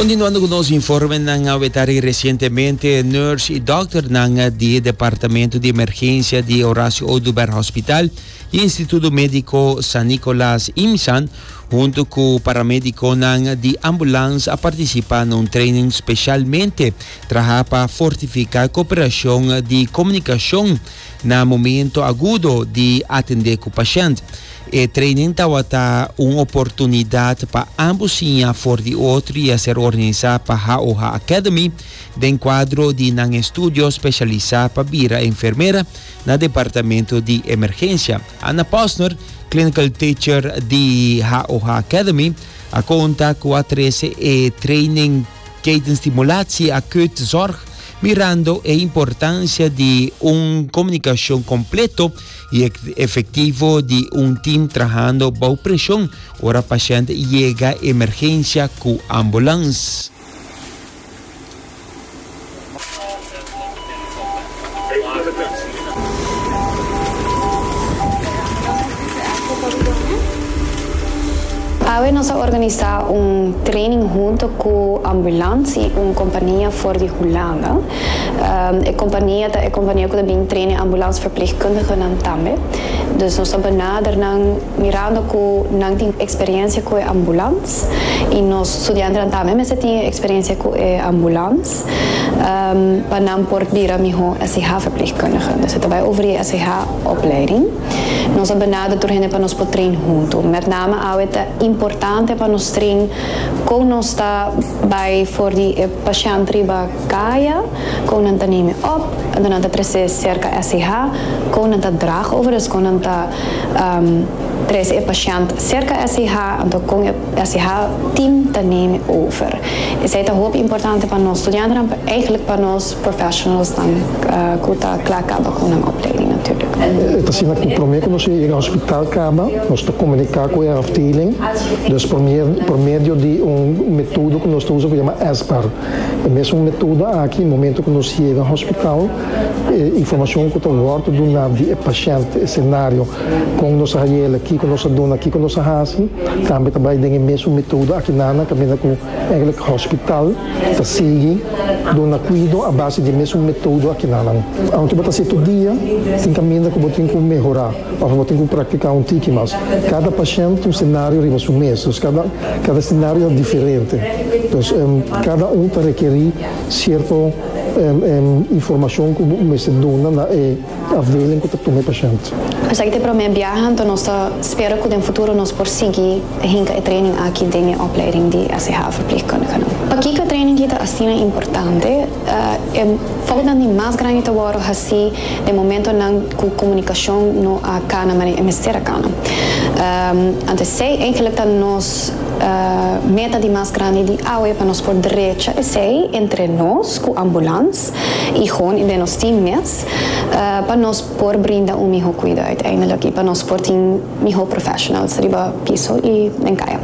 Continuando cu nos informenan, a weta di recientemente nurse y dokternan di Departamento di Emergencia di Horacio Oduber Hospital y Instituto Medico San Nicolas, IMSAN, hunto cu paramediconan di ambulance a participa na un training specialmente traha pa fortifica cooperacion di comunicacion na momento agudo di atendé ku pashènt. E training tabata un oportunidat pa ambos siña for di otro i a ser organisá pa HOH Academy den kuadro di nan estudio spesialisá pa bira enfermera na Departamento di Emergensia. Anna Posner, Clinical Teacher di HOH Academy, a konta ku a trese e training. Jayden Stimulatie a Kurt Zorg mirando e importancia di un comunicacion completo y efectivo di un team trahando bao presion ora pashent yega emergencia cu ambulance. Awe nos a organisa un training hunto cu Ambulansi, un compania for di Hulanda. E compania ta e compania cu ta bin train e ambulansverpleegkundigennan tambe. Dus nos ta benader nan mirando cu nan tin experiencia cu e ambulans. ambulans y nos studiantenan tambe mester tin e experiencia cu e ambulans pa nan por bira miho SCH verpleegkundige. Dus e ta bay over di SCH opleiding. Nos a benader tur hende pa nos por train hunto. Met name awe ta importante pa nos train con nos ta bay for di e pashent riba caya, con nan ta neme op, con nan ta trece cerca SCH, con nan ta drag over, dus con nan ta. Tres e pashènt serka SIH, anto kon e SIH team ta neme over. Esei ta hopi importante pa nos studiantenan, pa eigenlik pa nos professionalsnan ku ta kla kaba ku nan opleiding natuurlijk. E ta asina ku promé ku nos a yega hospital kaba, nos ta komuniká ku e afdeling, dus por medio di un metodo ku nos ta usa ku yama SBAR. E mesun metodo aki, momentu ku nos yega hospital, E informashon ku ta wòrdu duná di e pashènt, e senario, kon nos a hayela, kiko nos a duna, kiko nos a hasi, tambe ta bai den e mesun metodo aki nan na kaminda ku Eggelijk Hospital ta sigui duna kuido a base di e mesun metodo aki nannan. Aunke bo ta hasi tur dia, tin kaminda ku bo tin ku mehorá òf bo tin ku praktiká un tiki mas. Kada pashènt un senario riba su mes, dus kada kada senario ta diferente, dus kada un ta rekerí sierto. Informashon ku bo mester duna na e afdeling ku ta tuma e pashènt. Esaki ta e promé biaha, anto nos ta spera ku den futuro nos por sigui ta hinka e training aki den e opleiding di SHVP-Kundighenan. Pakiko e training hita asina importante? E foutnan di mas grandi ta wòrdu hasi den momentonan ku komunikashon no a kana manera e mester a kana. Anto esei, eigenlik ta nos Meta di mas grandi di awe pa nos por drecha esei entre nos ku ambulans i hon i den nos tin mes pa nos por brinda un mihó kuida uiteindelijk i pa nos por tin mihó professionals riba piso i den kaya.